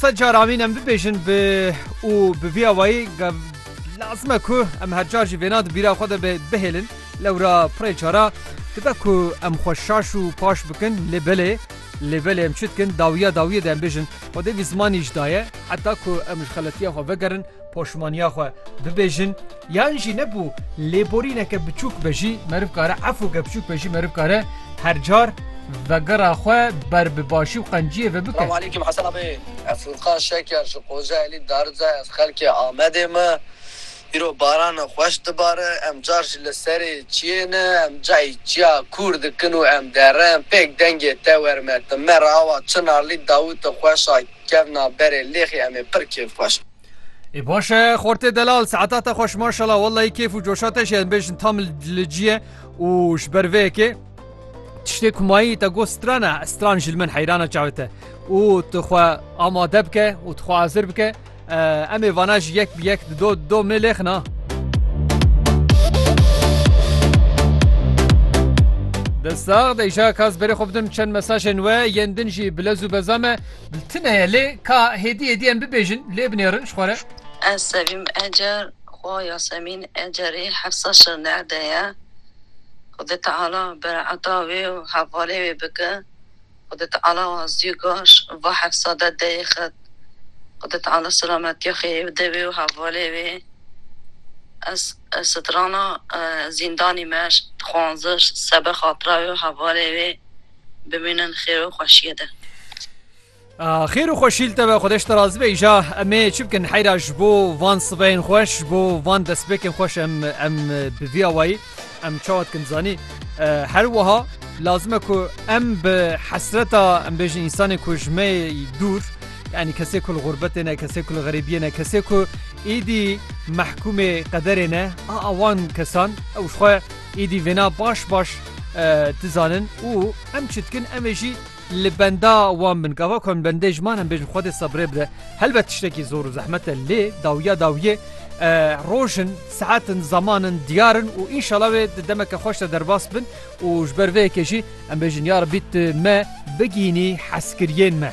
Sed car amîn em bibêjin bi û bi vî awayî lazim e ku em her car jî vêna di bîra xwe de be bihêlin. Lewra pirê cara dibe ku em xwe şaş û paş bikin lê belê lê belê em çi dikin dawiya dawiyê de em bêjin Xwedê vî zimanî ji daye heta ku em ji xeletiya xwe vegerin poşimaniya xwe bibêjin. Yan jî ne ku lêborîneke biçûk be jî meriv kare, efûke biçûk be jî meriv kare her car vegera xwe ber bi başî û qenciyê ve bike. Selamaleyküm Hesena bê ez Furkan Şeker ji Kocaelî Darıca ez xelkê Amedê me îro baran xweş dibare em car jî li serê çiyê ne em cayî çiya kûr dikin û em derin pêk dengê te werime ti me re awa çinarlî dawiti xweş a kevna berê lêxî em ê pir kêfxweş Ê baş e xortê delal saeta te xweş maşala wellahî kêf û coşa te jê bêjin tam li cî ye û ji ber vê yekê tiştê ku mayî te got strana stran ji li min heyrana çavê te û tu xwe amade bike û tu xwe hazir bike em ê vana ji yek bi yek di do do mê lêxina Destax de îşa kas berê xwe bidim çend mesajên we yên din jî bilez û bezame Li tune ye lê ka hêdî hêdî em bibêjin lê binêrin ji xwe re. Ez Sevîm Ecer xo Yasemîn Ecerî Hefsa Şirnex'de ye. Xwedê Teala bere'eta wê û hevalê wê bike. Xwedê Teala wazî gaş va Hefsa de deyê xet. Xwedê Teala selametiya xêrî bide wê û hevalê wê. Ez strana zîndanî me dixwanziş sebe xatira wê û hevalê wê. Bimînin xêr û xweşiyê de. Xêr û xweşî li te be Xwedeş te razî be îja emê çi bikin heyra ji bo van sibeyên xweş ji bo van destpêkên xweş em em bi vî awayî em çawa dikin zanî her wiha lazim e ku em bi hesreta em bêjin însanê ku ji me dûr yanî kesê ku li xûrbetê ne kesê ku li xerîbiyê ne kesê ku êdî mehkûmê qederê ne a wan kesan ew ji xwe Êdî vêna baş baş dizanin û em çi dikin em ê jî li benda wan bin. Gava ku em li bendê ji man em bêjin Xwedê sebrê bide. Helbet tiştekî zor û zehmet e lê dawiya dawiyê rojin, saetin, zamanin diyar in û înşala wê di demeke xweş de derbas bin û ji ber vê yekê jî em bêjin ya Rebî tu me bigihînî hezkiriyên me.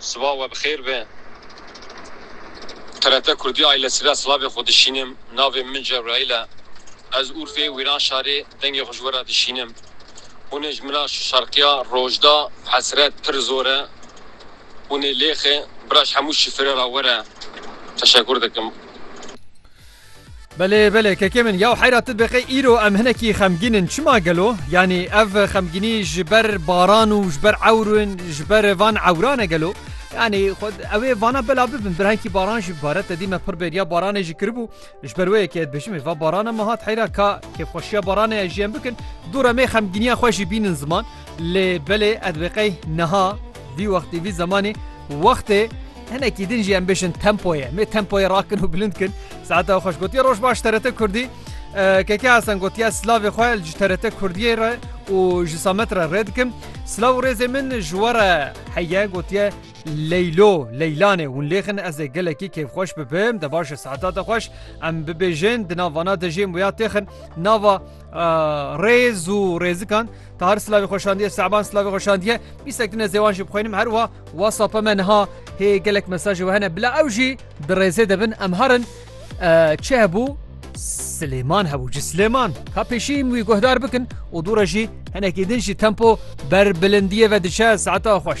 Siva we bi xêr be. TRT Kurdî Aile Sira silavê xwe dişînim. Navê min Cebraîl e. Ez Urfê Wîranşarê dengê xwe ji we re dişînim. Hûnê ji min re şarkiya Rojda Hesret pir zor e. Hûnê lêxê bira ji hemû şifirê re were. Teşekur dikim. Belê belê kekê min yaw heyra tu dibeqê îro em hinekî xemgîn in çima gelo? Yanî ev xemgînî ji ber baran û ji ber ewr in ji ber van ewran e gelo? Yanî xwe ew ê vana bela bibin birhenkî baran jî bare te dîme pir bêriya baranê jî kiribû ji ber wê yekê dibêjim ê va barana min hat heyra ka kêfxweşiya baranê ez jî em bikin dûr em ê xemgîniya xwe jî bînin ziman lê belê ez dibeqey niha vî wextî vî zemanî wextê Hinekî din jî em bijin tempoyê me tempoyê rakin û bilind kin saete xwe ji gotiya roj baş TRT Kurdî KK Hasan gotiya silavê xwe ji TRT Kurdiyê re û ji Samet re rê dikim silav û rêzê min ji we re heye gotiye Leylo Leylanê hûn lêxin ez ê gelekî kêfxweş bibim de baş e saeta te xweş em bibêjin di nav vana de jê muya têxin nava rêz û rêzikan tahar silavê xweşandiye Seban silavê xweşandiye bîsek din ez ê wan jî bixwînim her wiha Whatsapp me niha hê gelek mesajê we hene bila ew jî di rêzê de bin em herin çi hebû Silêman hebû ji Silêman ka pêşî wî guhdar bikin û dû re jî henekî din jî tempo ber bilindiyê ve diçe saeta xweş.